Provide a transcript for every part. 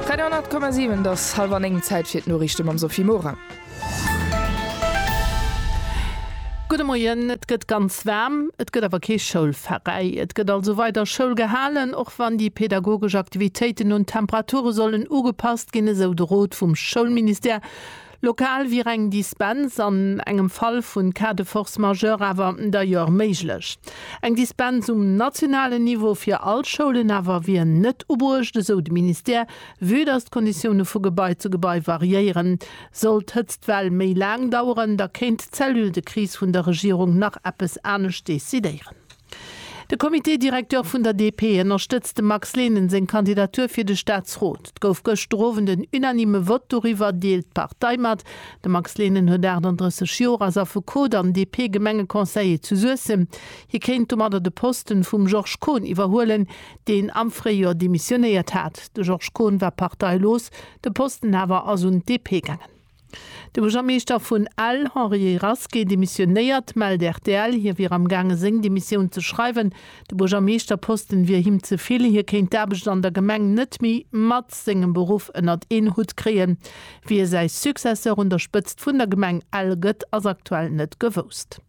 93,7 dass halwer 9 Zäit fir d'Noriichte mam Sophie Morang. Gudde Moien, Et gëtt ganz waarm, et gëtt awer kee Schoulveräi. Et gëtt also weider Schoul gehalen, och wann déi pedagogesch Aktivitéiten un d'Temperature sollen ugepasst ginn, esou de Rot vum Schoulministère. Lokal wier eng Dispens an engem Fall vu Cas de force majeure awer d'ailleurs méiglech. Eng Dispens um nationalen Niveau fir all Schoulen awer wier net ubruecht, esou de Ministère. Vue datt d'Konditioune vu Gebai zu Gebai variéieren, sollt d'Hëtztwell méi laang daueren, da kéint d'Cellule de crise vun der Regierung nach eppes anescht decidéieren. De Comité directeur vun der DP ënnerstëtzt dem Max Lehnen seng Kandidatur fir de Staatsrot. Et gouf gëschter Owend en unanime Vott doriwwer, deelt d'Partei mat. De Max Lehnen huet 38 Joer, ass Affekot an DP-Gemengeconseiller zu Suessem. Hie kéint domadder de Posten vum Georges Kohn iwwerhuelen, deen am Fréijoer demissionéiert hat. De Georges Kohn war parteilos, de Posten awer ass un d'DP gaangen. De Buergermeeschter vun Ell, Henri Rasqué, demissionéiert, mellt rtl. Hie wier am gaange seng Demissioun ze schreiwen. De Buergermeeschterposten wier him ze vill. Hie kéint d'Aarbecht an der Gemeng net méi mat sengem Beruff ënnert een Hutt kréien. Wie säi Successeur un der Spëtzt vun der Gemeng Ell gëtt, ass aktuell net gewousst.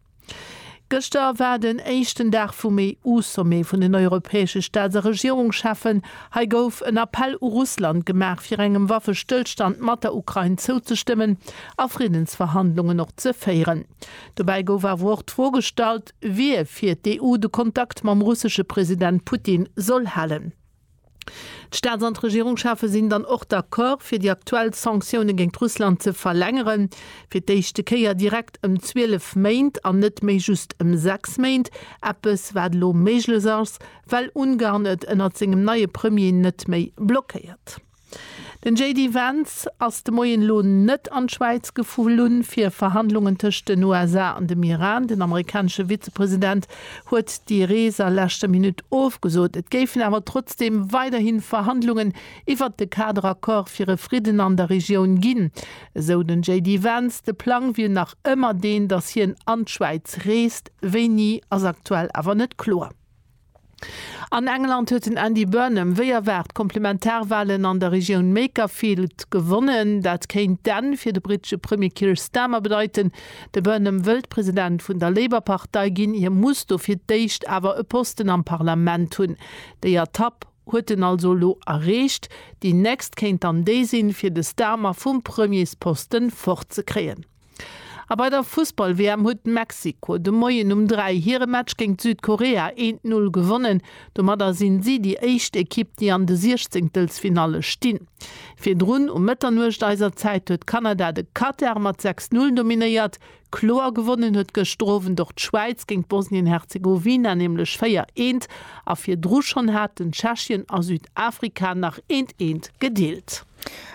Gëschter war den éischten Dag vum EU-Sommet vun den europäesche Staats a Regierungscheffen. Hei gouf en Appell u Russland gemaach, fir engem Waffestëllstand mat der Ukrain zouzestëmmen a Friddensverhandlungen och ze féieren. Dobäi gouf awer och d'Fro gestallt, wie fir d'EU de Kontakt mam russesche President Putin soll halen. D'Staats an d'Regierungschefe sinn dann och d'accord, fir déi aktuell Sanktioune géint Russland ze verlängeren, fir d'éischte Kéier direkt ëm 12 Méint an net méi just ëm 6 Méint, eppes wat elo méiglech ass, well Ungarn et ënnert sengem neie Premier net méi blockéiert. Den JD Vance ass de Moien elo net an d'Schwäiz geflunn, fir Verhandlungen tëscht den USA an dem Iran. Den amerikanesche Vizepresident huet déi Rees a leschter Minutt ofgesot. Et géifen awer trotzdeem weiderhi Verhandlungen iwwert de Kaderaccord fir e Fridden an der Regioun ginn, esou den JD Vance. De Plang wier nach ëmmer deen, datt hien an d'Schwäiz reest, wéini ass aktuell awer net kloer. An England huet den Andy Burnham wéi erwaart d'Komplementarwalen an der Regioun Makerfield gewonnen. Dat kéint d'Enn fir de brittesche Premier Keir Starmer bedeiten. De Burnham wëllt President vun der Labour-Partei ginn. Hie muss dofir d'éischt awer e Posten am Parlament hunn. Déi Etapp huet en also elo erreecht. Déi nächst kéint dann déi sinn, fir de Starmer vum Premiersposten fort ze kréien. A bei der Fussball-WM huet Mexiko de Moien um 3 hire Match géint Südkorea een t Null gewonnen. Domadder sinn si déi éischt Ekipp, déi an de Siechzéngtelsfinalle stinn. Virdrun um Mëtternuecht eiser Zäit huet Kanada de Katar mat 6 Null dominéiert. Kloer gewonnen huet gëschter Owend och d'Schwäiz géint Bosnien-Herzegowina, nämlech 4 eent. A virdru schonn haten Tschechien a Südafrika nach een t eent gedeelt.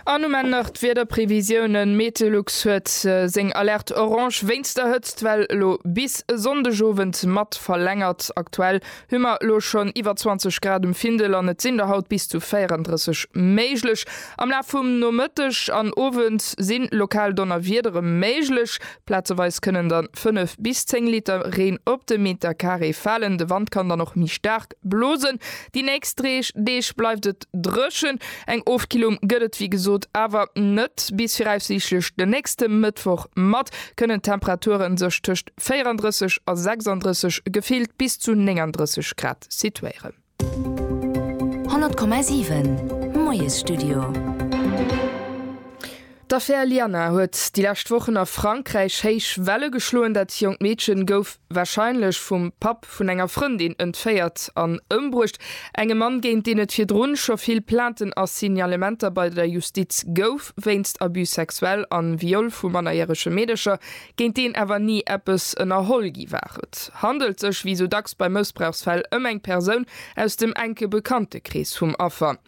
An um Enn nach d'Wiederprevisiounen, Meteolux huet seng Alerte orange wéinst der Hëtzt well elo bis e Sonndegowend mat verlängert. Aktuell hu mer elo schonn iwwer 20 Grad um Findel an et sinn der haut bis zu 34 méiglech. Am Laf vum Nomëtteg an Owend si lokal Donnerwiedere méiglech, plazeweis kënnen dann 5 bis 10 Liter Reen op de Metercarré falen. De Wand kann dann och méi staark Blosen. Déi nächst Dreeg Deeg bleift et dréchen, eng Ofkillung gëtt et wéi gesot awer net. Bis viraussiichtlech de nächste Mëttwoch mat kënnen d'Temperature sech tëscht 34 a 36, gefillt bis zu 39 Grad situéieren. 100,7 Moiesstudio. D'Affär Liana huet déi lescht Wochen a Frankräich héich Welle geschloen. Dat jonkt Meedchen gouf warscheinlech vum Papp vun enger Frëndin entféiert an ëmbruecht. Engem Mann, géint deen et virdrun scho vill Plainten a Signalementer bei der Justiz gouf wéinst Abus sexuels a Viol vu mannerjärege Meedercher, géint deen awer ni eppes ënnerholl gi war. Et handelt sech wéi sou dacks bei Mëssbrauchsfäll ëm eng Persoun aus dem enke Bekanntekrees vum Affer.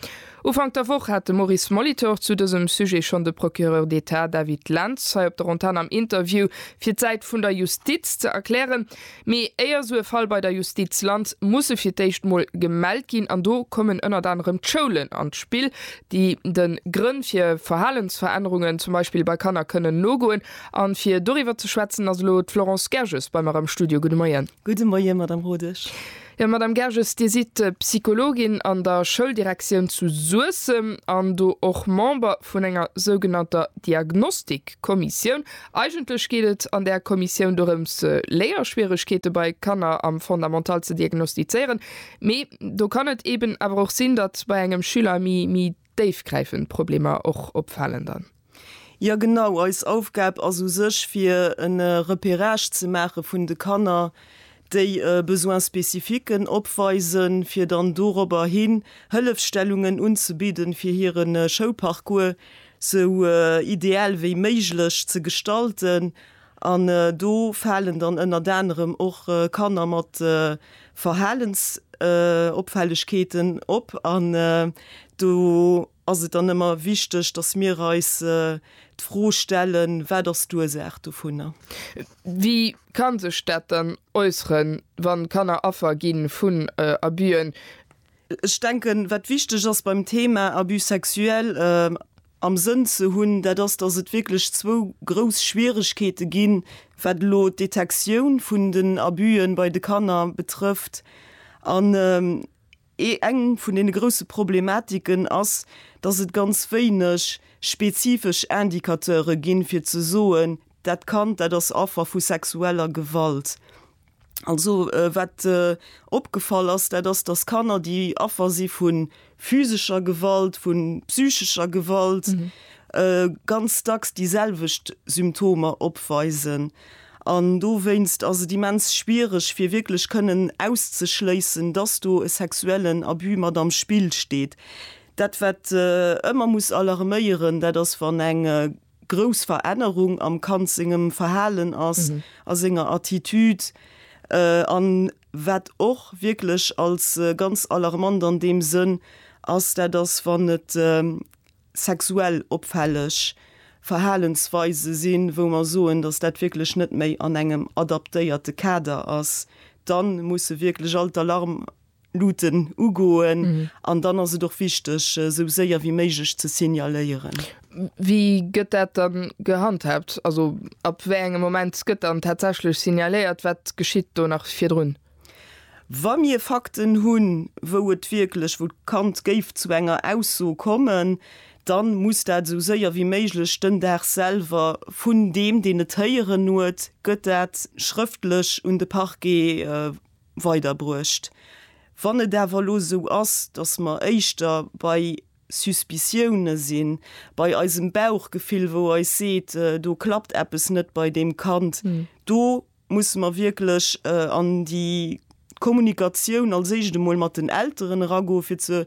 Ufank der Woch hat de Maurice Molitor zu dësem Sujet schonn de Procureur d'Etat David Lentz hei op der Antenn am Interview fir d'Säit vun der Justiz ze erklären. Mee éier esou e Fall bei der Justiz lant, muss e fir d'éischt mol gemellt ginn. An do kommen ënnert anerem d'Schoulen an d'Spill, déi de Grënn fir Verhalensverännerungen zum Beispill bei Kanner kënnen nogoen. A fir doriwwer ze schwätzen ass elo d'Florence Gerges bei mer am Studio. Gudde Moien. Gudde Moie Madame Rodesch. Jo, Madame Gerges, Dir sidd Psychologin an der Schouldirektioun zu Suessem an do och Member vun enger sougenannter Diagnostikkommissioun. Eigentlech geet et an där Kommissioun dorëms, Léierschwieregkeete bei Kanner am Fondamental ze diagnostizéieren. Mee do kann et eeben awer och sinn, datt bei engem Schüler méi, méi. Déifgräifend Problemer och opfalen dann? Jo genau, eis Aufgab ass u sech fir en Repérage ze maache vun de Kanner déi e Besoin spécifiquen opweisen, fir dann dorobber hin Hëllefstellungen unzebidden fir hiren Schouparcours sou ideal wéi méiglech ze gestalten An do falen dann ënnert anerem och Kanner mat Verhalensopfällegkeeten op. An do ass et dann ëmmer wichteg, dass mir eis d'Fro stellen, Wat ass d'Ursaach dovunner? Wéi ka sech dat dann äusseren, wann Kanner Affer gi vun Abüen? Ech denken, wat wichteg ass beim Thema Abus sexuel am Sënn ze hunn, dat ass, dass et wierklech zwou grouss Schwieregkeete ginn, wat elo d'Detektioun vun den Abusë bei de Kanner betrëfft. An eng vun deene grouse Problematiken ass, dass et ganz wéineg spezifesch Indicateure ginn, fir ze soen, dat Kand, dat ass Affer vu sexueller Gewalt. Also wat opgefall ass, dat ass, datt Kanner, déi Affer si vu physescher Gewalt, vu psychescher Gewalt, ganz dacks déi selwecht Symptomer opweisen. An dowéinst ass et immens schwiereg, fir wierklech kënnen auszeschléissen, datt do e sexuellen Abus mat am Spill steet. Dat wat ëmmer muss alarméieren, dat ass wann eng. grouss Verännerung am Kand sengem Verhalen ass, a senger Attitude, an wat och wierklech als ganz alarmant an deem Sënn ass, dat ass wann et sexuell opfälleg Verhalensweise sinn, wou mer soen, dass dat wierklech net méi an engem adaptéierte Kader ass, da musse wierklech all d'Alarm Luuten ugoen an dann ass et och wichteg, esou séier wéi méiglech ze signaléieren. Wéi gëtt dat da gehandhaabt? Also ab wéi engem Moment gëtt dann tatsächlech signaléiert? Wat geschitt do nach virdrun? Wa mir Fakten hunn, wou et wierklech, wou d'Kand géif zu enger Ausso kommen, dann muss dat esou séier wéi méiglech den Dag selwer vun deem, deen et héieren huet, gëtt dat schrëftlech un de Parquet, weiderbruecht. Wann et awer elo esou ass, datt mer éischter bei Suspiciounen sinn, bei eisem Bauchgefill, wou eis seet, do klappt eppes net bei deem Kand, do musse mer wierklech an déi Kommunikatioun als éischt emol mat den Elteren eragoen, fir ze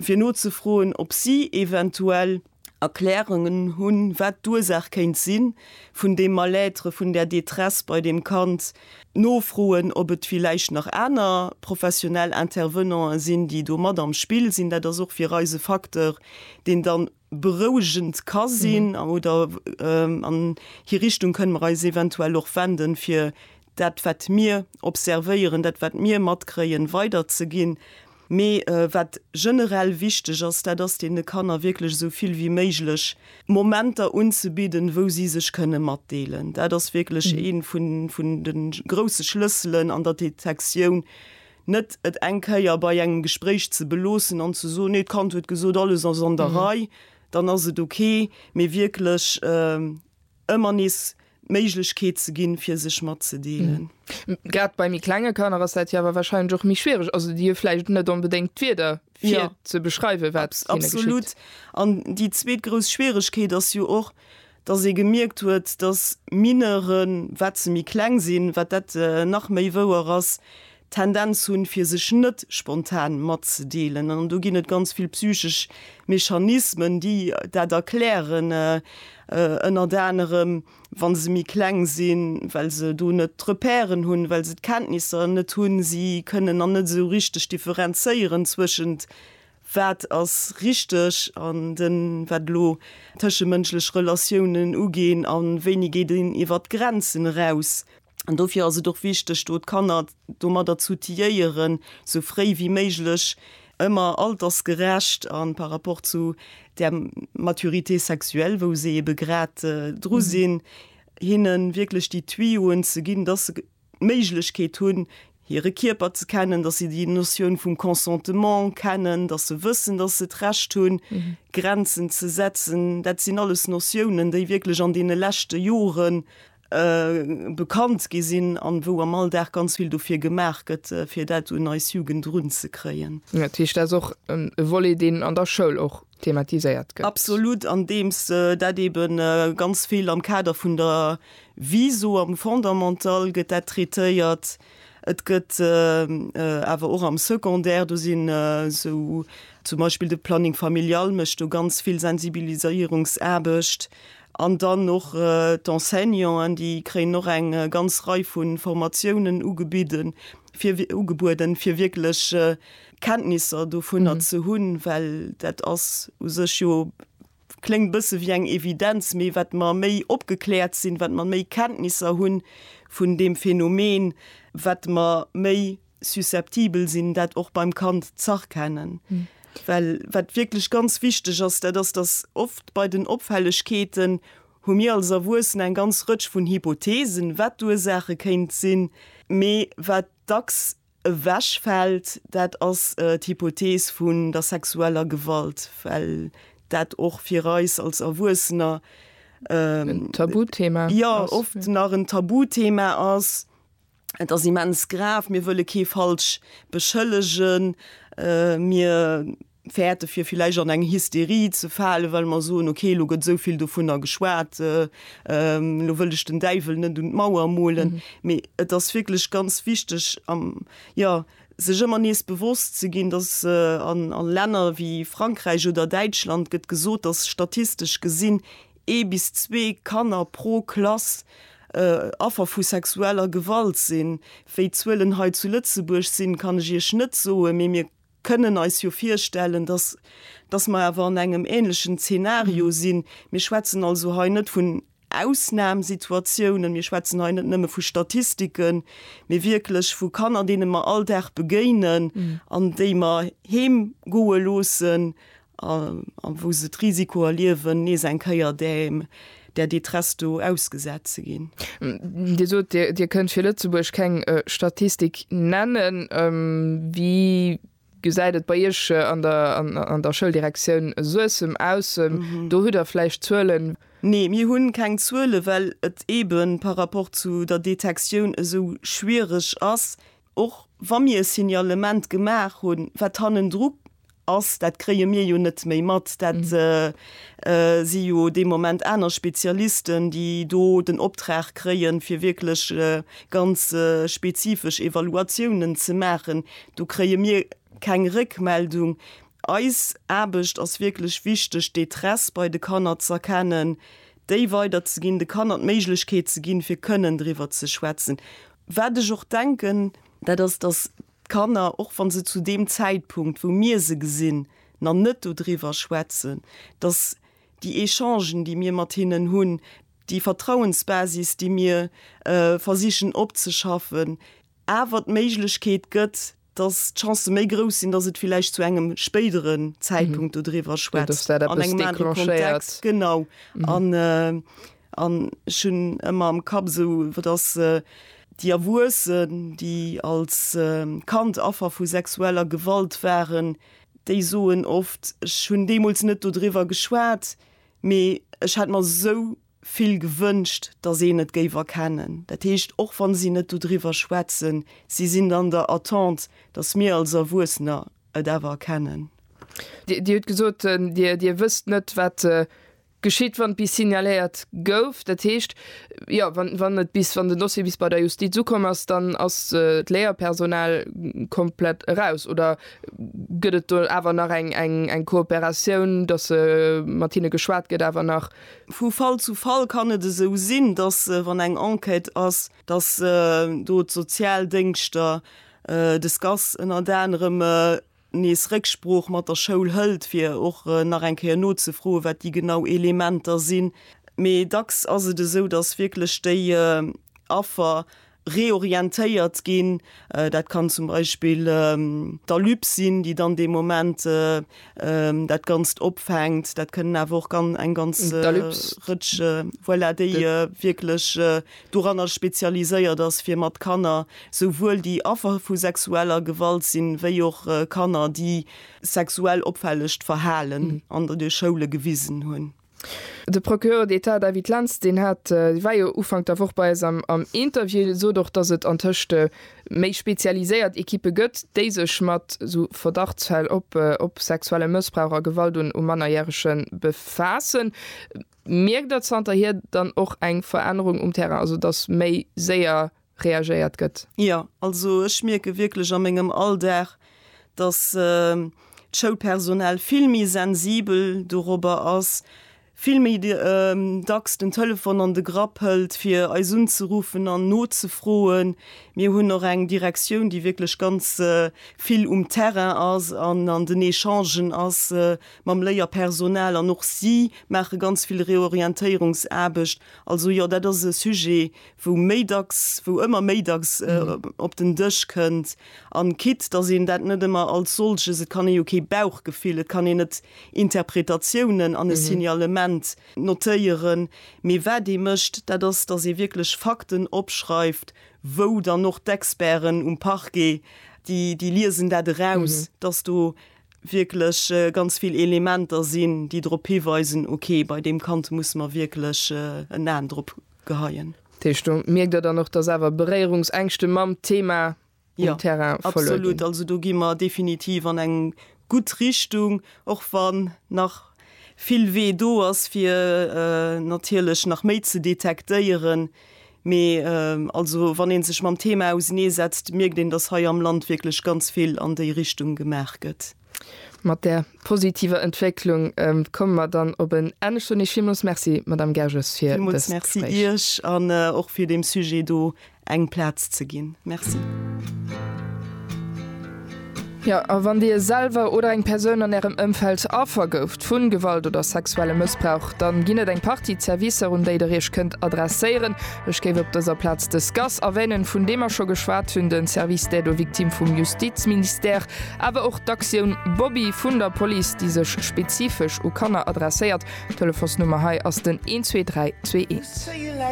fir nozefroen, ob si eventuell Erklärungen hunn, wat d'Ursaach kéint sinn, vun deem Mal-être, vun där Détresse bei deem Kand, nofroen, ob et villäicht nach aner professionell Intervenanten sinn, déi do mat am Spill sinn. Dat ass och fir eis e Facteur, deen dann berouegend ka sinn, oder an hir Richtung kënne mer eis eventuell och wenden, fir dat, wat mir observéieren, dat, wat mir matkréien, weiderzeginn. Mee wat generell wichteg ass, dat ass deene Kanner wierklech esou vill wéi méiglech Momenter unzebidden, wou si sech kënne matdeelen. Dat ass wierklech ee vun de grousse Schlësselen an der Detektioun, net et eng Kéier bei engem Gespréich ze beloossen an ze soen, nee d'Kand huet gesot, alles ass an der Rei, dann ass et ok, mee wierklech ëmmer nees d'Méiglechkeet ze ginn, fir sech matzedeelen. Grad bei méi klenge Kanner ass dat jo awer warscheinlech och méi schwiereg. Also déi hu vläicht net onbedéngt d'Wierder, fir ja. ze beschreiwen, wat hinne geschitt. Absolut. An déi zweet grouss Schwierigkeet ass jo och, dass ee gemierkt huet, dass Mineuren, wat se méi kleng sinn, wat dat äh, nach méi wouer ass, Tendenz hunn, fir sech net spontan matzedeelen. An do ginn et ganz vill psychesch Mechanismen, déi dat erklären, ënnert anerem, wa se méi kleng sinn, well se do net d'Repèren hunn, well se d'Kenntnisser net hunn. Si kënnen dann net esou richteg differenzéieren zwëschent, wat ass richteg an den, wat elo tëschemënschlech Relatiounen uginn a wéini geet een iwwert d'Grenzen eraus. An dofir ass et och wichteg, do d'Kanner domadder z'outiliéieren, sou fréi wéi méiglech, ëmmer altersgerecht a par rapport zu där Maturité sexuelle, wou se ebe grad dru sinn, hinne wierklech déi Tuyauxen ze ginn, dass se d'Méiglechkeet hunn, hire Kierper ze kennen, dass se déi Notioun vum Consentement kennen, dass se wëssen, dass se d'Recht hunn, Grenzen ze setzen. Dat sinn alles Notiounen, déi wierklech an deene leschte Joren bekannt gi sinn an wou am Alldag ganz vill dofir gemaach gëtt, fir dat un eis Jugend erunzekréien. Dat heescht, dat ass och e Volet, deen an der Schoul och thematiséiert gëtt? Absolut, andeems dat eebe ganz vill am Kader vun der Viso am Fondamental gëtt dat traitéiert. Et gëtt awer och am Secondaire, do sinn esou zum Beispill de Planning familial mécht do ganz vill Sensibiliséierungsaarbecht. An dann och d'Enseignanten, déi kréien och eng ganz Rei vu Formatiounen ugebidden, fir, ugebueden, fir wierklech Kenntnisser dovunner ze hunn, well dat ass u sech jo, kléngt e bësse wéi eng Evidenz, mee wat mer méi opgekläert sinn, wat mer méi Kenntnisser hu vun deem Phänomen, wat mer méi susceptibel sinn, dat och beim Kand z'erkennen. Well wat wierklech ganz wichteg ass, dat ass, dass oft bei den Opfällegkeeten hu mir als Erwuessen eng ganz Rëtsch vun Hypotheesen, wat d'Ursaache kéint sinn. Mee wat dacks ewechfält, dat ass d'Hypothees vun der sexueller Gewalt, well dat och fir eis als Erwuessener, jo, oft nach en Tabuthema ass. Et ass immens grav, mir wëlle kee falsch beschëllegen, mir fäerte fir villäicht an eng Hysterie ze falen, well mer soen, okay elo gëtt esou vill dovunner geschwat, elo wëll ech den Däiwel net un d'Mauer molen. Mee et ass wierklech ganz wichteg, jo sech ëmmer nees bewosst ze ginn, datt a Länner wéi Frankräich oder Däitschland gëtt gesot, datt statistesch gesinn ee bis zwee Kanner pro Klass Affer vu sexueller Gewalt sinn. Wéi d'Zuelen hei zu Lëtzebuerg sinn, kann ech Iech net soen, mee mir kënnen eis jo virstellen, dass dass mer awer an engem änlechen Zeenario sinn. Mir schwätzen also hei net vun Ausnamsituatiounen, mir schwätzen hei net nëmme vu Statistiken, mee wierklech vu Kanner, deene mer all Dag begéinen an déi mer heemgoe loossen a wou se d'Risiko erliewen, nees eng Kéier däem där Détresse do ausgesat ze ginn. Dir sot, Dir kënnt fir Lëtzebuerg keng Statistik nennen. Wéi gesäit et bei Iech an der Schouldirektioun Suessem aus? Do hutt Der vläicht Zuelen? Nee, mir hu keng Zuelen, well et eeben par rapport zu der Detektioun esou schwiereg ass, Och wa mir e Signalement gemaach hunn, wat hannendru ass, dat kréie mir jo net méi mat. Dat si jo dee Moment aner Spezialisten, déi do den Optrag kréien, fir wierklech ganz spezifesch Evaluatiounen ze maachen. Do kréie mir keng Réckmeldung. Eis Aarbecht ass wierklech wichteg, d'Détresse bei de Kanner z'erkennen, déi weiderzeginn, de Kanner d'Méiglechkeet ze ginn, fir kënnen driwwer ze schwätzen. Wat ech och denken, dat ass, dass d'Kanner, och wa se zu deem Zäitpunkt, wou mir se gesinn, nach net dodriwwer schwätzen, dass déi Echangen, déi mir mat hinnen hunn, déi Vertrauensbasis, déi mir versichen opzeschaffen, awer d'Méiglechkeet gëtt, dass d'Chancë méi grouss sinn, dass et villäicht zu engem spéidere Zäitpunkt dodriwwer schwätzt, an engem anere Kontext. Genau. An ech hunn ëmmer am Kapp esou, wat ass déi Erwuessen, déi als Kand Affer vu sexueller Gewalt waren, déi soen oft, ech hunn deemools net dodriwwer geschwat, mee ech hätt mer esou, vill gewënscht, datt een et géif erkennen. Dat heescht, och wa si net dodriwwer schwätzen, si sinn an der Attente, datt mir als Erwuessener et awer erkennen. Dir hutt gesot, Dir wësst net, wat geschitt, wann bis signaléiert gouf. Dat heescht, jo, wann den Dossier bis bei der Justiz ukomm ass, dann ass d'Léierpersonal komplett eraus? Oder gëtt et do awer nach eng Kooperatioun, datt mat hinne geschwat gëtt awer nach? Vu Fall zu Fall kann et esou sinn, dass wann eng Enquête ass, dass do d'Sozialdéngschter de SCAS ënnert anerem nees Récksprooch mat der Schoul hëlt, fir och nach eng Kéier nozefroen, wat déi genau Elementer sinn. Mee dacks ass et esou, dass wierklech déi Affer reorientéiert ginn. Dat kann zum Beispill d'ALUP sinn, déi dann dee Moment dat Ganzt opfänkt. Dat kënnen awer och eng ganz Rëtsch, voilà, déi wierklech doranner spezialiséiert ass, fir mat Kanner, souwuel déi Affer vu sexueller Gewalt sinn, wéi och Kanner, déi sexuell opfällecht Verhalen an de Schoule gewisen hunn. De Procureur d'Etat David Lentz, deen hat, dee war jo Ufank der Woch bei eis am Interview, sot och, datt et antëscht méi spezialiséiert Ekippe gëtt, déi sech mat esou Verdachtsfäll op sexuelle Mëssbrauch a Gewalt un Mannerjärege befaassen. Mierkt Der zanterhier dann och eng Verännerung um Terrain, also datt méi séier reagéiert gëtt. Jo, also ech mierke wierklech a mengem Alldag, dass d'Schoulpersonal vill méi sensibel dorobber ass, vill méi dacks den Telefon an de Grapp hëlt, fir eis unzeruffen an nozefroen. Mir hunn och eng Direktioun, déi wierklech ganz vill um Terrain ass an an den Echangen ass mam Léierpersonal an och si maache ganz vill Reorientéierungsaarbecht. Also jo, dat ass e Sujet, wou méi dacks, wou ëmmer méi dacks op den Dësch kënnt, an quitte dass een dat net ëmmer als solches, et kann ee jo kee Bauchgefill, et kann een net Interpretatiounen an e Signalement notéieren, mee wat ee mécht, dat ass, dass ee wierklech Fakten opschreift, wou dann och d'Experten um Parquet, déi, déi liesen dat eraus, dass do wierklech ganz vill Elementer sinn, déi drop hiweisen, okay, bei deem Kand musse mer wierklech en Aen drop. geheien. Dat heescht, do mierkt Der dann och, dass awer Beréierungsängschte mam Thema um Terrain vole ginn? Jo, absolut. Also do gi mer definitiv an eng gutt Richtung, och wann nach vill Wee do ass, fir natierlech nach méi ze detektéieren. Mee also wann ee sech mam Thema auseneesetzt, mierkt een, dass hei am Land wierklech ganz vill an déi Richtung gemaach gëtt. Mat där positiver Entwécklung komme mer dann op en Enn. Ech soen Iech villmools Merci, Madamm Gerges, fir dëst Gespréich. Villmools Merci Iech an och fir deem Sujet do eng Plaz ze ginn. Merci. Jo, a wann Dir selwer oder eng Persoun an Ärem Ëmfeld Affer gouft vu Gewalt oder sexuellem Mëssbrauch, dann ginn et eng Partie Zerwisser, un déi Der Iech kënnt adresséieren. Ech géif op dëser Plaz de SCAS erwänen, vun deem mer scho geschwat hunn, de Service d'aide aux victimes vum Justizministère, awer och d'Aktioun Bobby vun der Police, déi sech spezifesch u Kanner adresséiert. D'Telefonsnummer hei ass den 12321.